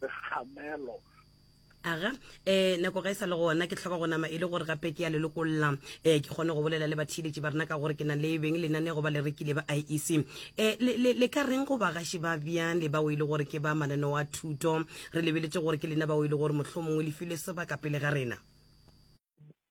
segamelo aga eh nako ga e sa le gona ke tlhoka go nama e le gore gape ke ya lelokolla eh ke kgone go bolela le bathiletši ba rena ka gore ke na le beng lenane go ba le rekile ba iec e eh, le ka reng go bagaši ba bjang le bao e le gore ke ba mananeo a thuto re lebeletše gore ke lena bao e le gore mohlho mongwe le file sebaka pele ga rena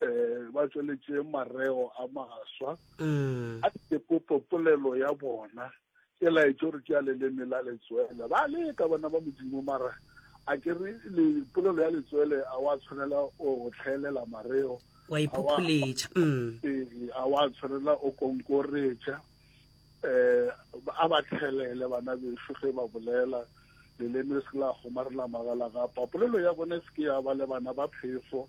eh ba tsweletše mareo a maswa mm. a tepopo polelo ya bona e laetše gore ke ya leleme la letswele ba leka bana ba modimo mara a ke re polelo ya letswele a wa tshwanela o tlhaelela mareo wa iphopholetša mm. ee, a wa tshwanela o konkoretša eh a ba tlhelele bana beso ge ba bolela leleme se la gomarela magala ga papolelo ya bone se ke ya ba le bana ba phefo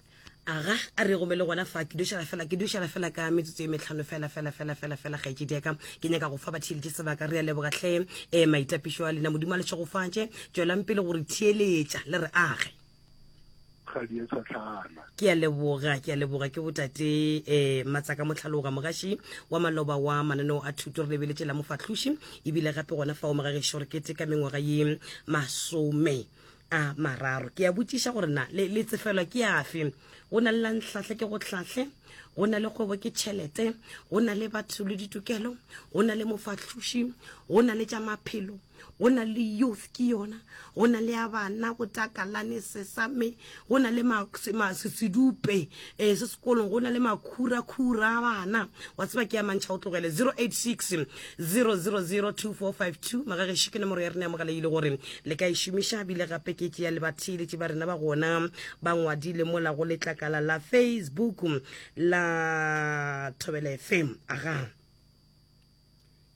aga a re gome le gona fa ke dušela fela ke dušela fela ka metsotso e metlhano fela fela fela fela fela gaetšedi yaka ke nyaka go fa batheeletše sebaka re a lebogatlhe um eh, maitapišo a lena modimo a le tšhegofatše tswelang pele gore theeletša le re age ga di a tšhatlhana ke a leboga ke a leboga ke botate eh matsaka motlhaloga mogaši wa maloba wa mananeo a thuto re lebeletše la mofahloši ebile gape gona fa o mogageši gore kete ka mengwaga ye masome a mararo ke a botšiša gore na le, le tsefelwa ke afe go na le la nhlahle ke go hlahle go na le kgwebo ke tšhelete go na le batho le ditokelo go na le mofahloši go na le tša maphelo go na le youth ke yona go na le ya bana go takalane sesame go na le sedupe um eh, se sekolong go na le makhurakhura a bana wa tseba ke ya mantšha o tlogele 086 0002452 magageši ke nomoro ya rena ya mogala ile gore le ka e šomiša bile gape ke tšea le batheeletše ba rena ba gona ba ngwadile mola go letlakala la facebook la thobela fm aga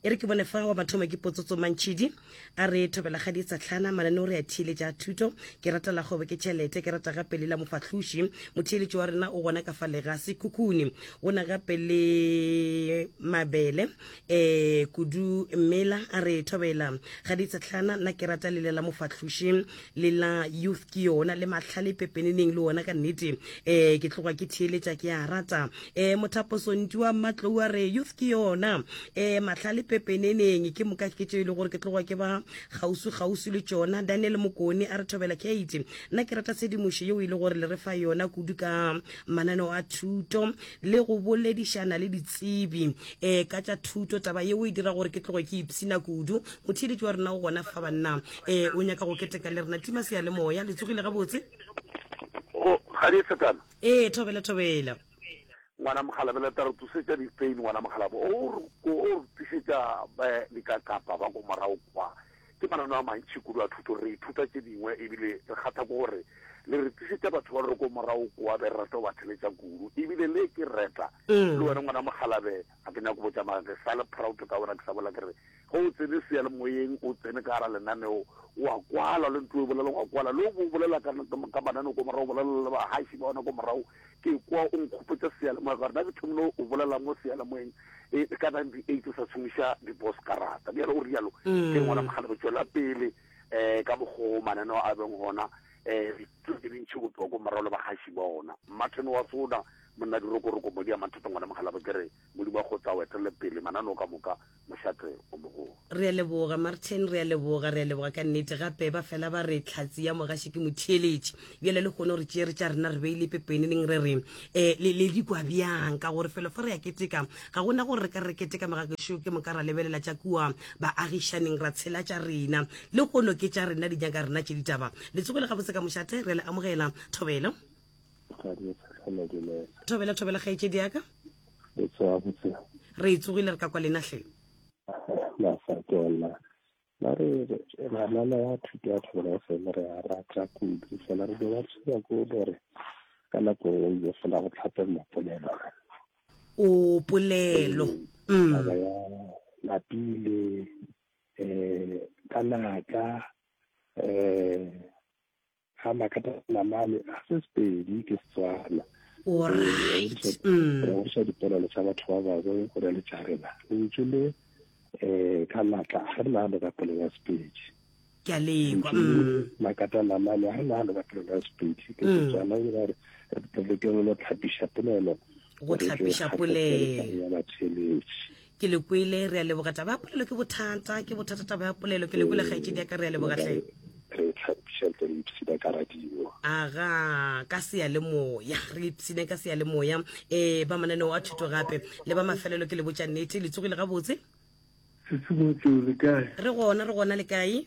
e re ke bone fa wa mathomo ke potsotso mantšhidi A re thobela ga ditsatlhana, mananeo re a theeletša a thuto. Ke rata la kgwebo ke tšhelete, ke rata gape le la mofahloši. Motheeletši wa rena o gona ka fa le ga sekhukhuni. Go na gape le mabele um kudu mela. A re thobela ga ditsatlhana, nna ke rata le le la mofahloši. le la youth ke yona le mahlale pepeneneng le ona ka nnete um ke tloga ke theeletša ke a rata um eh, mothaposonti wa matlou a re youth ke yona um eh, mahlale pepeneneng ke moka ke tšeo e le gore ke tloga ke ba kgauswi kgauswi le tšona daniel mokone a re thobela kate nna ke rata tshedimošo yeo e le gore le re fa yona kudu ka mananeo a thuto le go boledišana le ditsebi um ka tša thuto taba yeo e dira gore ke tloge ke ipshina kudu motheeletši wa rena o gona fa banna um o nyaka go keteka le rena tima seyalemoya le tsogile gabotse ee thobela thobela ngwana mogalabela taro tusetša dipain ngwana mogalabo o re tusetša eh, dikakapa ba ko morago kwa ke manano a mantšhi kudu a thuto re ithuta tše dingwe ebile re kgatha ko gore le re tlisetša batho ba re ko morago koa be re rata go ba theletša kudu ebile le ke reta mm. le wena ngwana mogalabe Ga ke nyake go botša mara ke sa le proud ka wena ke sa bolela ke re ge o tsene seyalemoyeng o tsene ka gara lenaneo o a kwala le ntlo e bolela go a kwala le o bo bolela ka ka mananeo ko morago bolela le bahaši ba ona ko morago ke kwa o nkgopotsa seyalemoya ka gore na ke thomile o bolela mo seyalemoyeng e ka ninety eight o sa tshwengisa dibos karata bjale o rialo ke ngwana mogale go tswela pele um ka mokgoo mananeo a beng gona um ke dintšhi go tloa ko morago le bahaši ba ona martin wa sona Monna Dirokoroko, Modi a Mathata, Ngwana Mokgalabje, ke re Modimo a go tla o etelele pele mananeo ka moka, mošate o mogolo. Re a leboga, Martin, re a leboga, re a leboga ka nnete. Gape ba fela ba re, Hlatse ya mogaši ke motheeletši. Bjale lehono re tšere tša rena re beile pepeneneng re re, E, le, le di kwa bjang? Ka gore felo fa re a keteka, ga go na gore re ka re re keteka magagešo ke moka ra lebelela tša kua baagišaneng ra tshela tša rena. Lehono ke tša rena, di nyaka rena tše ditaba. Le tsogile gabotse ka mošate, re a le amogela. Thobelo. thobela thobela kgaetšedi yaka re e tsogile re ka kwa lena hle ba re banana ya thuto ya thobela ya fele re a rata kudu fela re be ba tshwenya ko gore ka nako e ile fela go tlhape mapolelo o polelo mm. taba ya lapile um ka naka um Ha makata namale a se sepedi ke setswana regoša dipolelo tsa batho ba bangwe go na le tša rena lentšu le um ka natla ga re nagano ka polelo ya sepedi ke a lekwa mm. makata namale ga re nagano ka polelo ya sepedi ke mm. setswana e gore re ke re lo tlhapiša polelo go tlhapiša polelo ya batheletši ke le kwele re a leboga taba ya polelo ke bothata ke bothata taba ya polelo ke le kwele kgaetšedi ya ka re a leboga tle re tlhapiša tle re ipsina ka radio aga ka seyalemoya re ipsine ka seyalemoya um eh, ba mananeo a thuto gape le ba mafelelo ke le botša nnete le tsogile gabotse setsimo tseo le kae re gona re gona le kae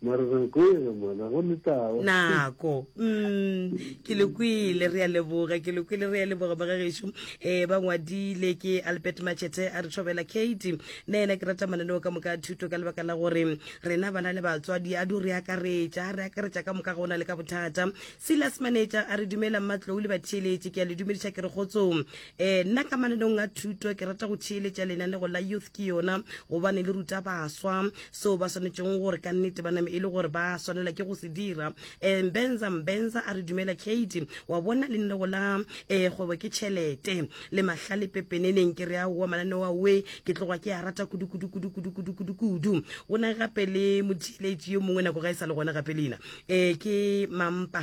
Mare nako e re mona go le tao. Nako. Mm, ke le kwele re a leboga, ke le kwele re a leboga ba gagešu. Eh ba ngwadile ke Albert Machete a re thobela Kate. Nna ena ke rata mananeo ka moka a thuto ka lebaka la gore rena bana le batswadi a du re akaretša, re akaretša ka moka ga ona le ka bothata. Silas Maneja a re dumela mmatlou le batheeletši ke a le dumediša ke re kgotsong. eh nna ka mananong a thuto ke rata go theeletša lenanego la youth ke yona gobane le ruta baswa seo ba swanetšeng gore ka nnete ba name e le gore ba swanela ke go se dira um mbenza mbenza a re dumela kate wa bona lenanego la um kgwebo ke tšhelete le mahlale pepeneneng ke re aowa mananeo aoe ke tloga ke a rata kudukudukudukudukudukudu go na gape le motheeletši yo mongwe nako ga e sa le gona gape leina um ke mampa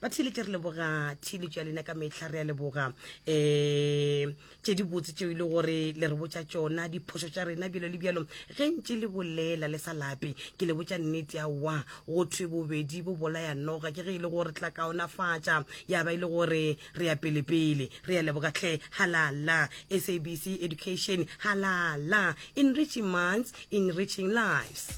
ba theletše re leboga theletšo ya lena ka metlha re ya leboga um eh, tše di botse tšeo e le gore le re botša tšona diphoso tša rena bjalo le bjalo ge ntše le bolela le sa lape ke le botša nnete ya wa go thwe bobedi bo bolaya noga ke ge e le gore tla kaonafatša ya ba e le gore re ya pelepele re ya leboga tlhe halala sabc education halala enriching months Music Enriching Lives.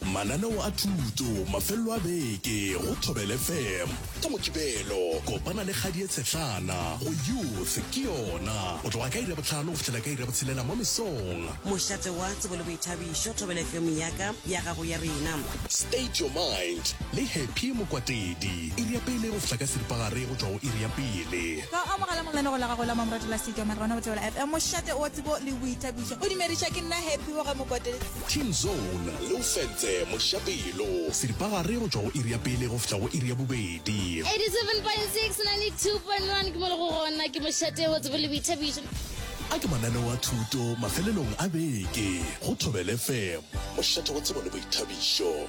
Mananeo a thuto mafelelo a beke go Thobela FM. Ka Mokibelo kopana le Kgadie Tshetlana go Youth ke Yona go tloga ka iri ya botlhano go fihlela ka iri ya botshelela mo mesong. Mošate wa tsebo le boithabišo, Thobela FM ya ka, ya gago, ya rena. State Your Mind le Happy Mokwatedi iri ya pele go fihla ka seripagare go tšwa go iri ya pele. Ka o amogela mo lenegong la gago la Mamoratela State Your Mind gona go Thobela FM. Mošate o. tsebo le boithabišo o dumediša ke nna happy boga mokotele Team Zone le o fentse mošapelo seripagare go tšwa go iri ya pele go fihla go iri ya bobedi. 87.6 na le 2.1 ke mo le go gona ke mošate wa tsebo le boithabišo. A ke mananeo a thuto mafelelong a beke go Thobel FM, mošate wa tsebo le boithabišo.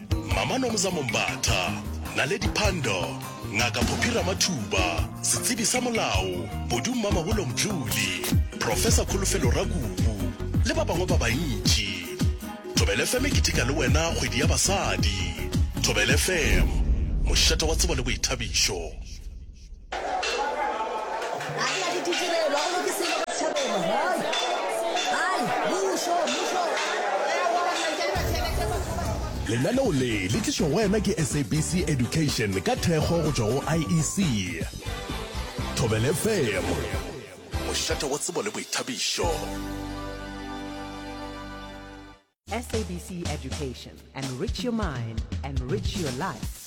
Mama Nomza Mombatha, Naledi Pandor, Ngaka Phophi Ramathuba, Setsebi sa Molao, Bodu Mmamabolo Mdluli, Professor Kholofelo Rakubu, le ba bangwe ba bantši. Thobela FM e keteka le wena kgwedi ya basadi. Thobela FM, mošate wa tsebo le boithabišo. lenaneo le le tlišo go wena ke sabc education ka thekgo go tšwa go iec thobele fm mošate wa tsebo le boithabišo sabc education enrich your mind enrich your life